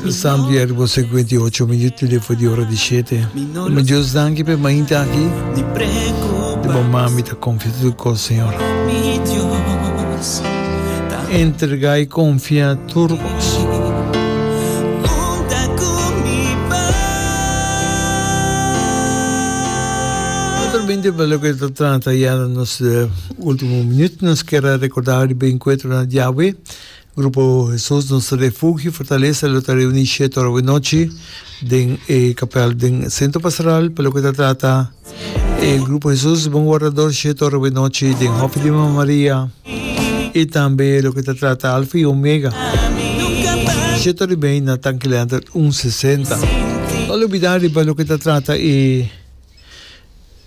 Salmsiervo cincuenta y ocho minuut i lefo di ora di shete Mama Dios danki p'e mainta aki Di bo man mi ta konfia tudu kos Señor Entrega i konfia tur kos Otro binte pa loke ta trata ya na nos ultimo minuut nos kere rekorda riba enkuentronan di Yahwe. Grupo Hesus nos Refugio Fortalesa lo ta reuní shiet ora wenochi den e kapèl den Sentro Pastoral pa loke ta trata e Grupo Hesus Bon Wardador, shiet ora wenochi den Hòfi di Mama Maria i tambe loke ta trata Alfa i Omega, shiet ora i mei na Tanki Lentert un sesenta. No lo bida riba loke ta trata e.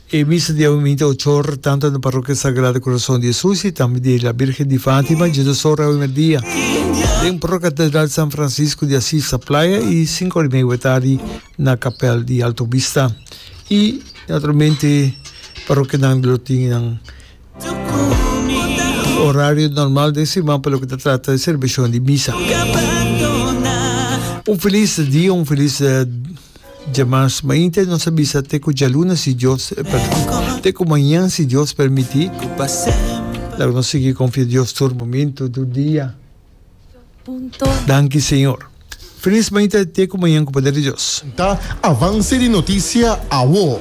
E misa di awe minte ochor, tantu na Parrokia Sagrado Corazon di Jesus y tambe di La Virgen di Fatima, dje dos ora awe merdia, den Procatedral San Francisco de Asis na Playa y sinku ora y medio awe tardi na Capel di Alto Vista. Y, naturalmente, parrokianan lo tin nan horario normal den siman pa loke ta trata di celebracion di misa. Un feliz dia, un feliz. Dja mas mainta nos a bisa te ku djaluna si Dios, perdon, te ku mañan si Dios permiti. Laga nos sigui konfia Dios tur momentu, tur dia. Danki Señor. Felis mainta te ku mañan ku poder di Dios. Ta avance di noticia awo.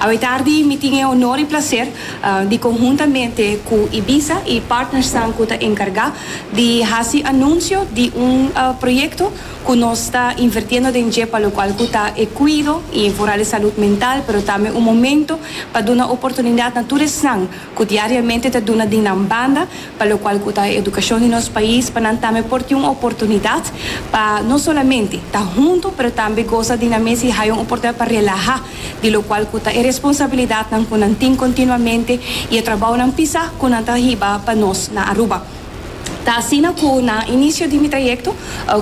Awor tardi mi tin e honor y placer di conhuntamente cu Ibiza y partnersnan cu ta encarga di haci anuncio di un proyecto cu nos ta invertiendo den dje pa locual cu ta e cuido y vooral e salud mental pero tambe un momento pa duna oportunidad na tur esnan cu diariamente ta duna di nan banda pa locual cu ta e educacion di nos pais pa nan tambe por tin un oportunidad pa no solamente ta hunto pero tambe goza di nan mes y haya un oportunidad pa relaha di locual cu ta e responsabilidadnan cu nan tin continuamente y e trabounan pisa cu nan ta hiba pa nos na Aruba. Ta asina cu na inicio di mi trayecto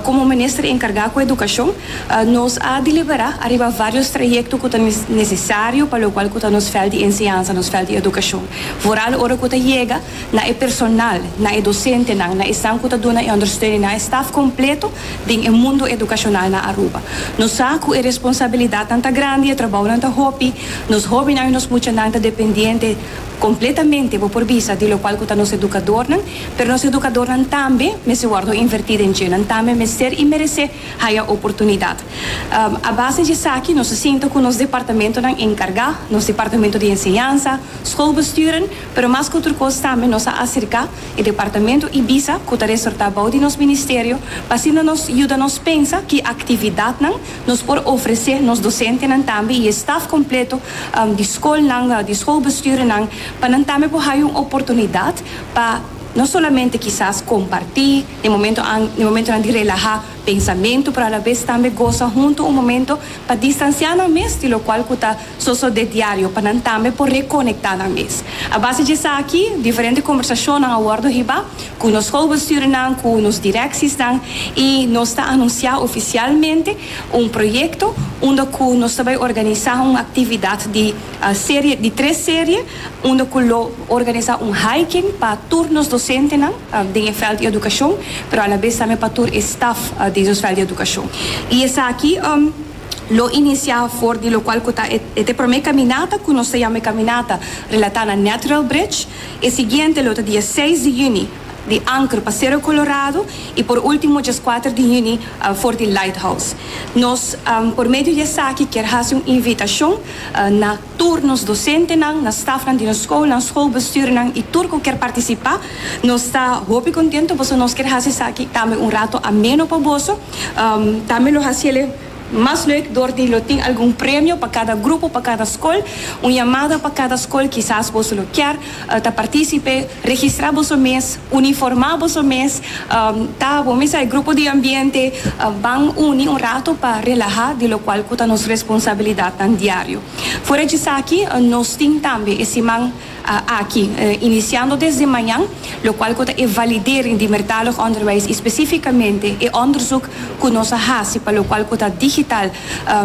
como Minister encarga cu Educacion, nos a delibera ariba varios trayecto cu ta necesario pa locual cu ta nos fel di enseñansa, nos fel di educacion. Vooral ora cu ta yega. na e personal, na e dosentenan, na esnan ku ta duna e ondersteuning, na e staf kompleto den e mundu edukashonal na Aruba. Nos sa ku e responsabilidatnan ta grandi, e trabounan ta hopi, nos hóbennan i nos muchanan ta dependiente kompletamente, bo por bisa, di lokual ku ta nos edukadornan, pero nos edukadornan tambe mester wòrdu invertí den dje, nan tambe mester i meresé haya oportunidat. A base di esaki nos a sinta ku nos departamentonan enkargá, nos departamento di enseñansa, skolbesturen, Pero mas ku tur kos tambe nos a aserká e departamento Ibiza ku ta resortá bou di nos ministerio pa asina nos yuda nos pensa ki aktividatnan nos por ofresé nos dosentenan tambe i e staf kompleto di skolnan di skolbestuurnan pa nan tambe por haya un oportunidat pa no solamente kisas kompartí den momento den momentonan di relahá pensamentu pero alabes tambe gosa huntu un momento pa distansiá nan mes di lokual ku ta. Soso d'e diario pa nan tambe por rekonektá nan mes. A base di esaki, diferente kombersashonnan a wòrdu hiba ku nos schoolbestuurnan, ku nos direksisnan i nos ta anunsiá ofisialmente un proyekto unda ku nos ta bai organisá un aktividat di serie di tres serie unda ku lo organisá un hiking pa tur nos dosentenan den e vèlt di edukashon pero alabes tambe pa tur e staf di nos vèlt di edukashon i esaki. lo inicia for di locual cu ta e te prome caminata cu nos ta yama e caminata relata na Natural Bridge, e siguiente lo ta dia seis di juni di Anker pa Cerro Colorado y por ultimo djes cuater di juni for di Lighthouse. Nos por medio di esaki kier haci un invitacion na. Tur nos dosentenan, na stafnan di nos skolnan, skolbestuurnan i tur ku ker partisipá, nos ta hopi kontentu pasobra nos ker hasi esaki tambe un ratu ameno pa boso. Tambe lo hasi el mas leuk dor di lo tin algun premio pa kada grupo, pa kada skol, un yamada pa kada skol, kisas boso lo kier. ta participe, registra boso mes, uniforma boso mes, ta bo mesa e grupo di ambiente ban uni un rato pa relaha di locual cu ta nos responsabilidadnan diario. Fora djesaki nos tin tambe e siman aki, iniciando desde mañan, locual cu ta e validering di mertalig onderwijs y specificamente e onderzoek cu nos a haci pa locual cu ta digital,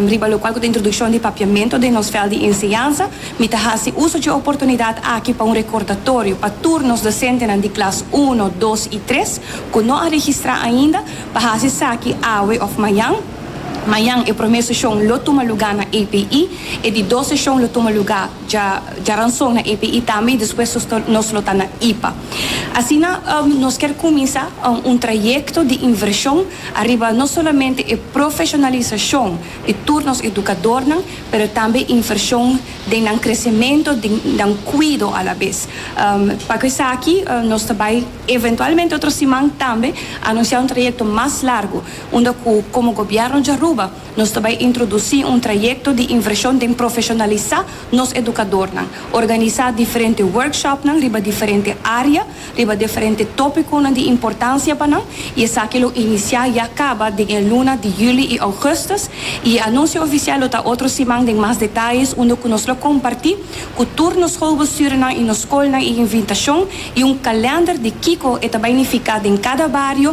riba locual cu ta introduccion di papiamento den nos veld di enseñansa. Mi ta hasi uso dje oportunidat aki pa un rekordatorio pa tur nos dosentenan di klas uno, dos i tres ku no a registrá ainda pa hasi esaki awe òf mañan. Mañan e promé seshon lo tuma lugá na API, e di dos seshon lo tuma lugá djaranson na API tambe i despues nos lo ta na IPA. Asina nos kier kuminsá un trayekto di invershon ariba no solamente e profeshonalisashon, di tur nos edukadornan, pero tambe invershon den nan kresementu, den nan kuido alabes. Paku esaki nos ta bai eventualmente otro siman tambe anunsiá un trayekto mas largu, unda ku komo Gobièrnu di Aruba nos ta bai introdusí un trayekto di invershon den profeshonalisá nos edukadornan, organisá diferente workshopnan riba diferente área, riba diferente tópikonan di importansia pa nan i esaki lo inisiá i a kaba den e luna di yüli i ougùstùs i e anunsio ofisial lo ta otro siman den mas detayes unda ku nos lo kompartí ku tur nos schoolbestuurnan i nos skolnan e invitashon i un kalènder di kiko e ta bai nifiká den kada bario